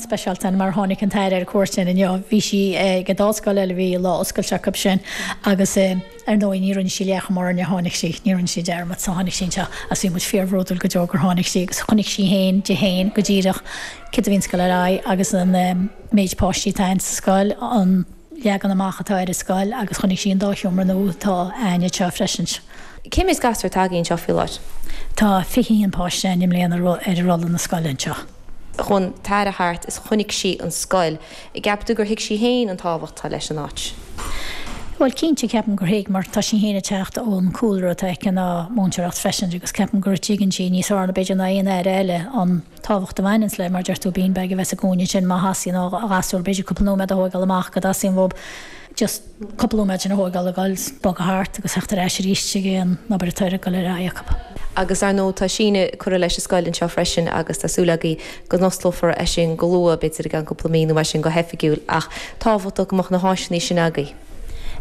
speisialta, mar a tháinig an tAire ar cuairt ann inniu, bhí sí ag an dá scoil eile, bhí a lá oscailte acu sin agus ar ndóigh ní rinne sí léacht mar a tháinig sí, ní rinne sí dearmad, so tháinig sí anseo agus bhí muid fíorbhródúil go deo gur tháinig sí agus chonaic sí féin, di féin, go díreach cad a bhíonns ag goil ar aghaidh agus an méid páistí atá againn sa scoil, an leagan amach atá ar an scoil agus chonaic sí an dá sheomra nua atá againn anseo freisin. Cé méid gasúr atá agaibh anseo faoi láthair? Tá 21 páiste againn i mbliana ar rolla na scoile anseo. Chuaigh an tAire thart is chonaic sí an scoil. An gceapann tú gur thuig sí féin an tábhacht atá leis an áit? Bhuel, cinnte, ceapaim gur thuig, mar tá sí féin ag teacht ón cúlra atá aici ná múinteoireacht freisin agus ceapaim go dtuigeann sí, níos fearr b'fhéidir ná aon Aire eile, an tábhacht a bhaineanns le, mar a deir tú, beanbag a bheith sa gcúinne sin má theastaíonn ó ghasúr b'fhéidir cúpla nóiméad a thóigeáil amach go dteastaíonn uathub. just cúpla nóiméad a thóigeáil a ghoil 's bogadh thart agus theacht ar ais aríst chuig an obair atá ag goil ar aghaidh acub. Agus ar ndóigh tá síneadh curtha leis an scoil anseo freisin agus tá súil agaibh go n-osclófar é sin go luath, b'fhéidir i gceann cúpla mí nó mar sin go hoifigiúil ach tábhachtach go mbeadh na háiseannaí sin agaibh.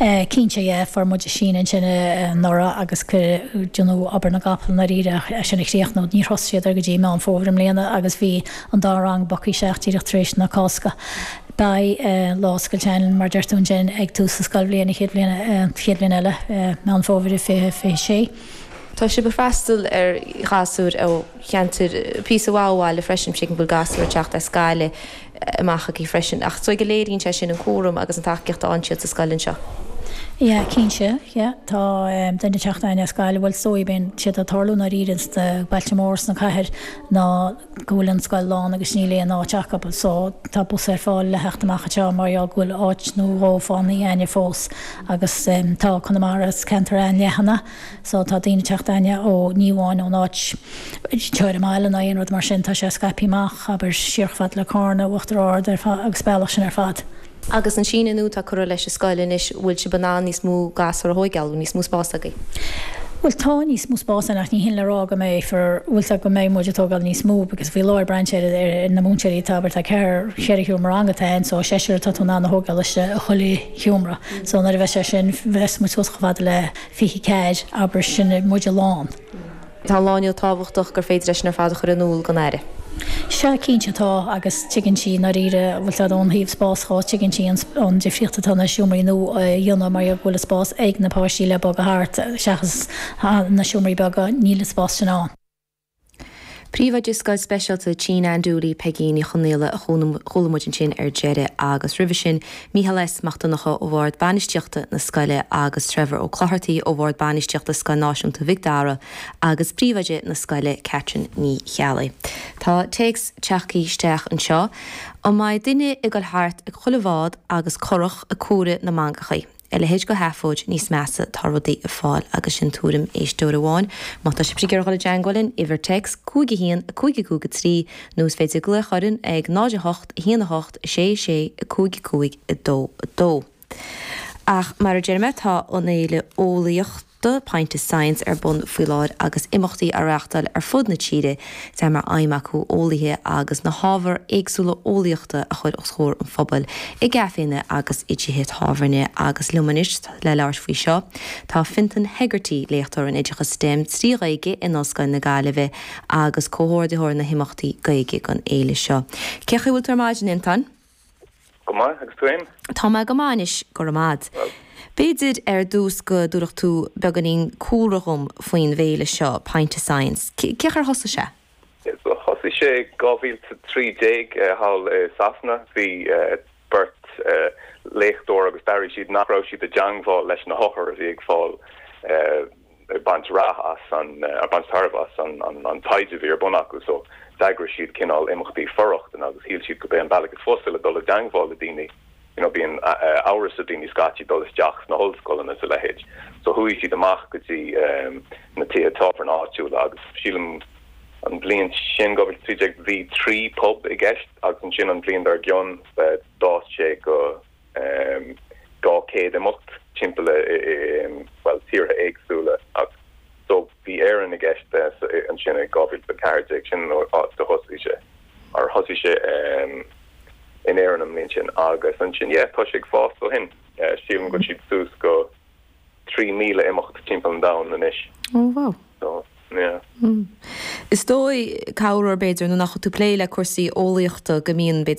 Eh cinnte yeah, fuair muid síneadh ansin anuraidh agus cuireadh, you know, obair na gcapall i ndáiríre ach é sin a chríochnú, níor thosaigh siad air go dtí Meán Fómhair i mbliana agus bhí an dá rang back isteach díreach tar éis na Cásca. Beidh lá oscailte againn, mar a deir tú ansin, ag tús an scoilbhliain, an chéad bhliain eile, Meán Fómhair 2026. Tá sibh ag freastal ar ghasúir ó cheantair píosa mhaith ó bhaile freisin, tuigim go bhfuil gasúir ag teacht as Gaillimh amach chugaibh freisin. Ach is dóigh go léiríonn sé sin an cúram agus an tacaíocht a fhaigheann siad sa scoil anseo. Yeah, cinnte, yeah. Tá duine ag teacht againn as Gaillimh, bhuel, is dóigh gurb éard atá ag tarlú i ndáiríre sna bailte móra sna cathair ná. go bhfuil an scoil lán agus níl aon áit acu so tá bus ar fáil le theacht amach anseo mar gheall go bhfuil áit nó dhó fágthaí againne fós agus tá Conamara is ceantar an-leathan é so tá daoine ag teacht againne ó ní amháin ón áit teoir mile ná aon rud mar sin tá sé scaipthe amach abair siar chomh fada le Carna Uachtar Ard ar fad agus an bealach sin ar fad. agus an síneadh nua atá curtha leis an scoil anois, bhfuil sibh in ann níos mó gasúr a thóigeáil, níos mó spás agaibh? Bhuel, tá níos mó spás againn ach ní shin le rá go mbeidh fir, bhuel tá, go mbeidh muid ag tógáil níos mó because faoi láthair braitheann sé ar na múinteoirí atá, bhuel tá ceathair, cheithre sheomra ranga atá ann so seisear atá tú in ann a thóigeáil istigh i chuile sheomra so nuair a bheas sé sin, bheas muid suas chomh fada le fiche ceathair, abair, sin muid lán. Tá an lá inniu tábhachtach gur féidir é sin ar fad a chur in iúl don Aire. Sea, cinnte atá, agus tuigeann sí, i ndáiríre, an bhfuil a fhios agat, ó thaobh spás dhó, tuigeann sí an difríocht atá na seomraí nua a dhéanamh mar gheall go bhfuil an spás ag na páistí le bogadh thart, seachas na seomraí beaga, níl an spás sin ann. Príomhoide Scoil Speisialta Tigh Nan Dooley, Peigín Ní Chonaola, a chuala muid ansin ar deireadh, agus roimhe sin, Mícheál S. Mac Donnacha ó bhord bainistíochta na scoile agus Trevor Ó Clothartaigh ó bhord bainistíochta Scoil Náisiúnta Mhic Dara agus príomhoide na scoile Catherine Ní Cheallaigh. Tá téacs tagthaí isteach anseo. An mbeidh duine ag dul thart ag chuile bhád agus curach ag comhaireamh na mangachaí. A leithéid de sheafóid níos measa tá rudaí ag fáil agus sin tuairim éisteora amháin. Má tá sibhse ag iarraidh dul i dteangmháil linn, uimhir téacs 51553 nó is féidir glaoch orainn ag 08 1 8 6 6 5 5 2 2 Ach mar a deir mé, tá an fhéile eolaíochta, Pint of Science, ar bun faoi láthair agus imeachtaí á reáchtáil ar fud na tíre. Tá mar aidhm acu eolaithe agus na hábhair éagsúla eolaíochta a chur os chomhair an phobail i gcaiféanna agus i dtithe tábhairne agus liom anois le labhairt faoi seo tá Fintan Hegarty, Léachtóir in Oideachas stem trí Ghaeilge in Ollscoil na Gaillimhe. agus comhordaitheoir na himeachtaí Gaeilge don fhéile seo. Cén chaoi a bhfuil tú ar maidin, a Fhiontáin? Go maith, agus tú fhéin? Tá mé go maith anois, go raibh maith 'ad. Bhuel. B'fhéidir ar dtús go dtabharfadh tú beagáinín cúlra dhom faoin bhféile seo, Pint of Science. Cén chaoi ar thosaigh sé? Thosaigh sé i 2013 thall i Sasana. Bhí beirt léachtóirí agus d'airigh siad nach raibh siad i dteangmháil leis na hothair a bhí ag fáil, ag baint rath as an, ag baint tairbhe as an taighde a bhí ar bun acu. So, d'eagraigh siad cineál imeachtaí for-rochtana agus shíl siad go b'é an bealach ab fhusa le dul i dteangmháil le daoine, you know, bíonn amhras ar daoine scaití dul isteach sna hollscoileanna is a leithéid. So chuaigh siad amach go dtí na tithe tábhairne áitiúla agus sílim an bhliain sin, 2013, bhí trí pub i gceist agus ansin an bhliain dár gcionn, d'fhás sé go, 200 imeacht timpeall i, bhuel, tíortha éagsúla so, bhí Éirinn i gceist ansin i 2014, sin an áit a thosaigh sé, or thosaigh sé in Éirinn an mbliain sin agus ansin, yeah, tá sé ag fás ó shin. Sílim go bhfuil siad suas go 3,000 imeacht timpeall an domhain anois. Oh, wow. So, yeah. Is dóigh, ar bhóthar b'fhéidir, nuair nach bhfuil tú ag plé le cúrsaí eolaíochta go mbíonn, b'fhéidir,